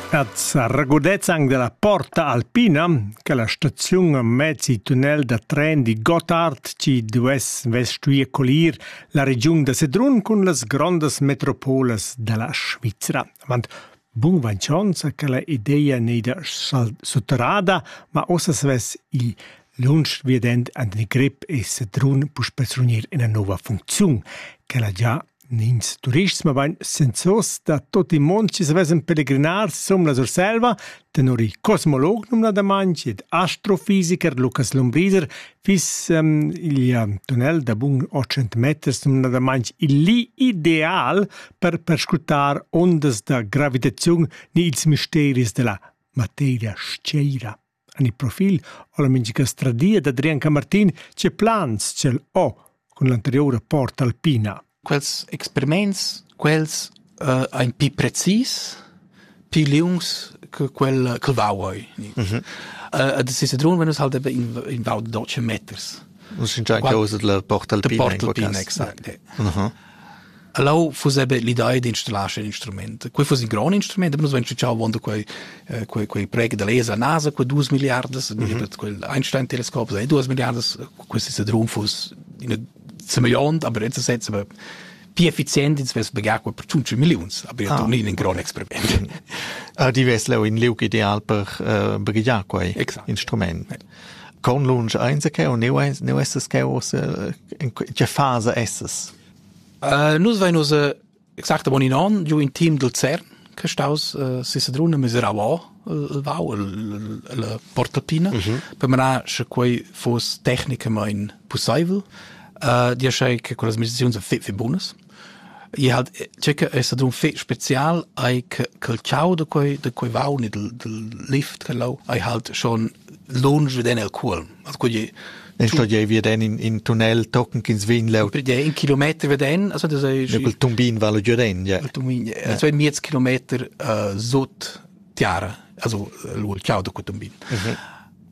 Ats regurdezzan della porta alpina che la staziun mezzi tunnel da tren di Gottard ci duess vestuir colir la regiun da Sedrun cun las grondas metropolas della Svizra. Avant bun vainchonza che la ideia nei da sutterrada, ma ossa svess il lunsch viedend an den Grip e Sedrun puspesrunir ina nova funziun che la già Nins turists, mabain sensors da tot il mond chi savessan pelegrinar som la Surselva, tenor il cosmolog numnadamaing ed astrofisicher Lukas Lombriser fiss um, il um, tunnel da bun 800 meters numnadamaing il li ideal per perscrutar ondas da gravitaziun ni ils misteris della materia sceira. En il profil ho la mincha stradia d'Adrian Camartin tge plans ch'el ho cun l'anteriur rapport Alpina. Quels experiments, quels uh, ein pi precis, pi liungs che quel che vauoi. Mm -hmm. uh, das ist run, wenn es halt in, in Vau de Deutsche Meters. Un sincer causa la Portalpina. De Portalpina, exact. Uh -huh. Leu fuss era l'idea d'installar sc'in instrument. Quei fuss in grond instrument, aber nus vein stuiu avon da quei eh, quei quei preg da laser a NASA quei dus milliardas, mm -hmm. quel Einstein-Teleskop sei duas milliardas, questi se drum fuss in semillont, aber jetzt setzen wir più efficienti ins vess pagar per 5 millions, aber ah. non in gran experiment. Ah, die wes leu in liug ideal per uh, eh, brigliar quei Exakt. instrument. Ja. Conlunsch ainsa cheu, neu, neu essas cheu ussa, tge fasa essas? Uh, nus vein ussa exactamain in onn giu in team dal CERN che staus uh, Sisadruna miserava il vau, la portatina, mm -hmm. per manar sche quei foss tecnicamain possibel. Uh, dir che con las meditazioni sind fit fit bunas. I ha tgei che ei stad un fetg special ei che quel tgau da quei da quei vaun e dal dal lift che lau ei halt schon lunsch veden el cuolm. Also quei ei Ne sto jei veden in, in tunnel tochen ch'ins vegn leu. Per in kilometer veden, also das ei Ja, quel tumbin vala giuren, ja. il tumbin, ja. so ein miez kilometer uh, sut tiara, also uh, lu il tgau da quei tumbin. Mhm.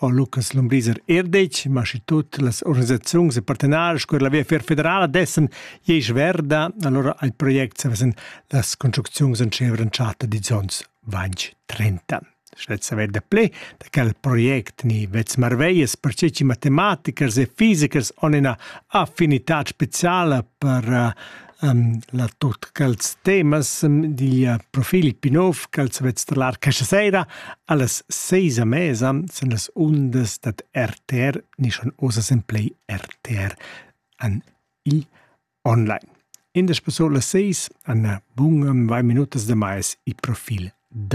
ho Lucas Lombriser er detg, ma schi tut las organisaziuns e partenari sco er la Viafier federala dessen iei sverda, allora al project savesen las construcziuns en Scevren Charter di Zons 2030. Schlezza verde ple da quel project ni vez marveias per ceci matematichers e fisicers on ina affinità speciala per uh, la tot quels temas digl profil Pinov ch'els vets trallar questa sera allas seis a mesa sen las undas dad RTR nischan osa sen play RTR an il online. In des pasola seis an bunam vai minutas de mais i profil dad